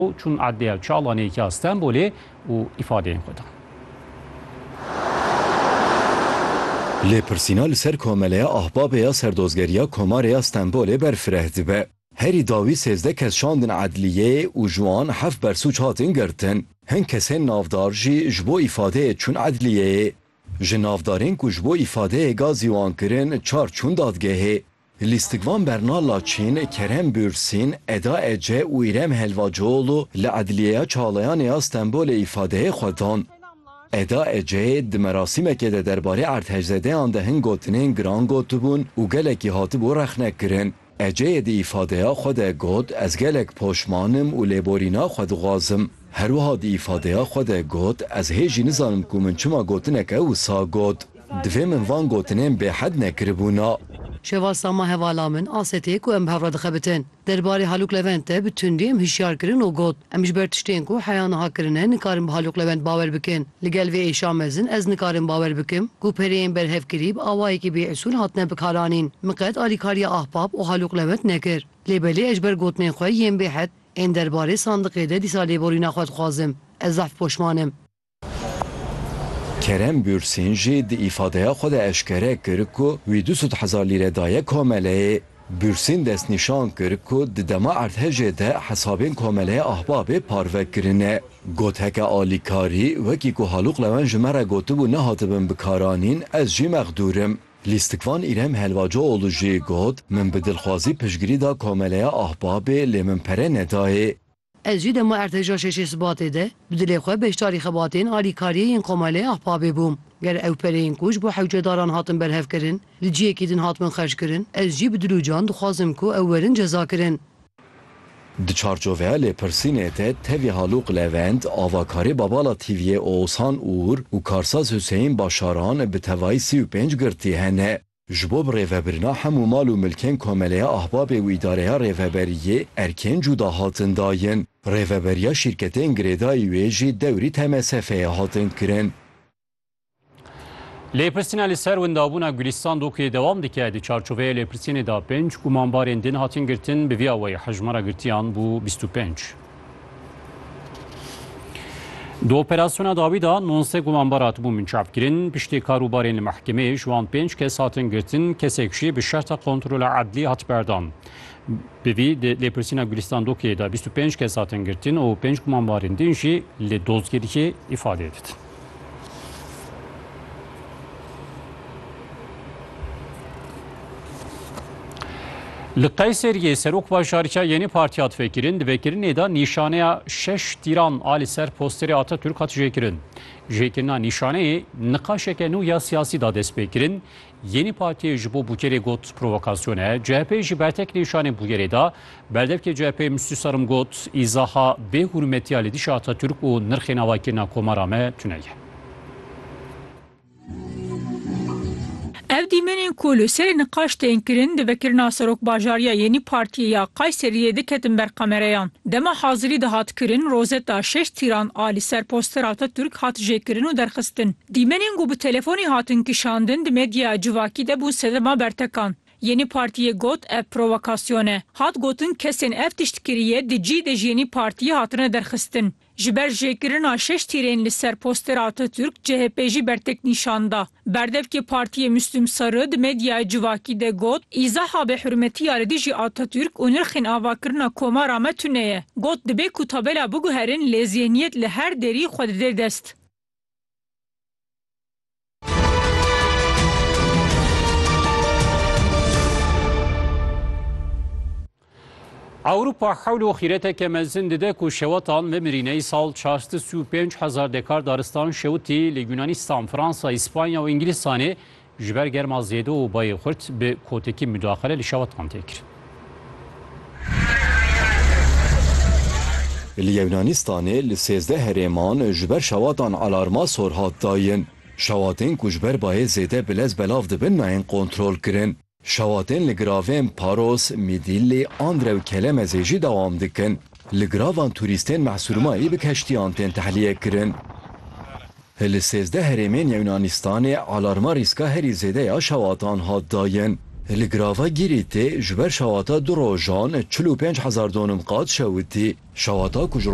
û çûn Edliya Çalanê ya Stenbolê û îfadeyên xwe dan. Lêpirsîna li ser Komeleya Ahbabê ya Serdozgeriya Komarê ya Stenbolê berfireh dibe. Herî dawî sêzdeh kes şandin edliyeyê û ji wan heft bersûc hatin girtin. Hin kesên navdar jî ji bo îfadeyê çûn edliyeyê. Ji navdarên ku ji bo îfadeyê gazî wan kirin çar çûn dadgehê. Lîstikvan Berna Laçîn, Kerem Bûrsîn, Eda Ece û Îrem Helvacioğlu li Edliyeya Çalayanê ya Stenbolê îfadeyê xwe dan. Eda Eceyê di merasîmekê de derbarê erdhejzedeyan de hin gotinên giran gotibûn û gelekî hatibû rexnekirin. Eceyê di îfadeya xwe de got, Ez gelek poşman im û lêborîna xwe dixwazim. Her wiha di îfadeya xwe de got, Ez hê jî nizanim ku min çima gotineke wisa got. Divê min van gotinên bêhed nekiribûna. Şeva Sama hevala min asê tê ku em bi hev re dixebitin. Der barê Haluk Levent de bi tundî em hişyar kirin û got, Em ji ber tiştên ku heya niha kirine nikarin bi Haluk Levent bawer bikin. Li gel vê êşa mezin ez nikarim bawer bikim ku pereyên berhevkirî bi awayekî bêusûl hatine bikaranîn. Min qet alîkariya Ahbap û Haluk Levent nekir. Lê belê ez ji ber gotinên xwe yên bêhed. Ên derbarê sandiqê de dîsa lêborîna xwe dixwazim. Ez zehf poşman im. Kerem Bûrsîn jî di îfadeya xwe de eşkere kir ku wî du sed hezar lîre daye komeleyê. Bûrsîn destnîşan kir ku di dema erdhejê de hesabên komeleya Ahbabê parve kirine. Got heke alîkarî wekî ku Halûq Lewen ji me re gotibû nehatibin bikaranîn ez jî mexdûr im. Lîstikvan Îrem Helvacoğlu jî got, Min bi dilxwazî piştgirî da Komeleya Ahbabê lê min pere nedayê. Ez jî dema Erteşa Şeşê Sibatê de bi dilê xwe beşdarî xebatên alîkariyê yên Komeleya Ahbabê bûm. Ger ew pereyên ku ji bo hewcedaran hatin berhevkirin li ciyekî din hatibin xerckirin, ez jî bi dil û can dixwazim ku ew werin cezakirin. Di çarçoveya lêpirsînê de tevî Halûq Levent, avakarê Babala TV'yê Oğuzhan Uğur û karsaz Hüseyin Başaran bi tevayî sî û pênc girtî hene. Ji bo bi rêvebirina hemû mal û milkên Komeleya Ahbabê û Îdareya Rêveberiyê erkên cûda hatin dayin. Rêveberiya şîrketên girêdayî wê jî dewrî TMSF'ê hatin kirin. Lêpirsîna li ser windabûna Gulîstan dokê dewam dike di çarçoveya lêpirsînê de pênc gumanbarên din hatin girtin bi vî awayî hejmara girtiyan bû bîst û pênc. Di operasyona dawî de nonse gumanbar hatibûn binçavkirin, piştê karûbarên li mehkemeyê ji wan pênc kes hatin girtin, kesek jî bi şerta kontrola edlî hat berdan. Bi vî di lêpirsîna Gulîstan dokê de bîst û pênc kes hatin girtin û pênc gumanbarên din jî li dozgeriyê îfadeyê didin. Li Qeyseriyê Serokbajarîka Yenî Partiya Difekirin di vekirinê de nîşaneya şeş tîran a li ser posterê Atatürk hat jêkirin. Jêkirina nîşaneyê niqaşeke nû ya siyasî da destpêkirin, Yenî Partiyê ji bo Bûkerê got provokasyon e, CHP'ê jî bertek nîşanê Bûkerê da. Berdevkê CHP'ê Mistî Sarim got, Îzaha bê hûrmetiya lêdîşa Atatürk û nirxê navakirina komara me tune ye. Ev dîmenên ku li serê niqaş tên kirin di vekirina serokbajariya Yenî Partiyê ya Kayseriyê de ketin ber kamereyan. Dema hazirî dihat kirin, rozeta şeş tîran a li ser postera Atatürk hat jêkirin û derxistin. Dîmenên ku bi telefonê hatin kişandin di medyaya civakî de bûn sedema bertekan. Yeni Partiyê got ev provokasyon e. Hat gotin kesên ev tişt kiriye di cih de ji Yeni Partiyê hatine derxistin. Ji ber jêkirina şeş tîrên li ser postera Atatürk chp jî bertek nîşan da. Berdevkê Partiyê Müslüm Sarı di medyaya civakî de got, Îzaha bêhurmetiya li dijî Atatürk û nirxên avakirina komara me tune ye. Got dibê ku tabela biguherin lê zêniyet li her derî xwe dide dest. Ewropa hewl û xîreteke mezin dide ku şewetan bimirîne îsal çarstu sî û pênc hezar dekar daristan şewitî li Yûnanîstan, Fransa, Îspanya û Îngilîstanê Ji ber germa zêde û bayê xurt bi kotekî mudaxile li şewatan tê kirin. Li Yewnanistanê li sêzdeh herêman ji ber şewatan alarma sor hat dayin. Şewatên ku ji ber bayê zêde bi lez belav dibin nayên kontrolkirin. Şewatên li giravên Paros, Midilli, Andre û Kelemezê jî dewam dikin. Li gravan turîstên Mesurumayê bi keştiyan tên tehliyek kirin. Li sêzdeh herêmên Yunanistanê alarma rîska herî zêde ya şewatan hat dayin. Li grava Gîrîtê ji ber şewata du rojan çil û pênc hezar donim qat şewitî. Şewata ku ji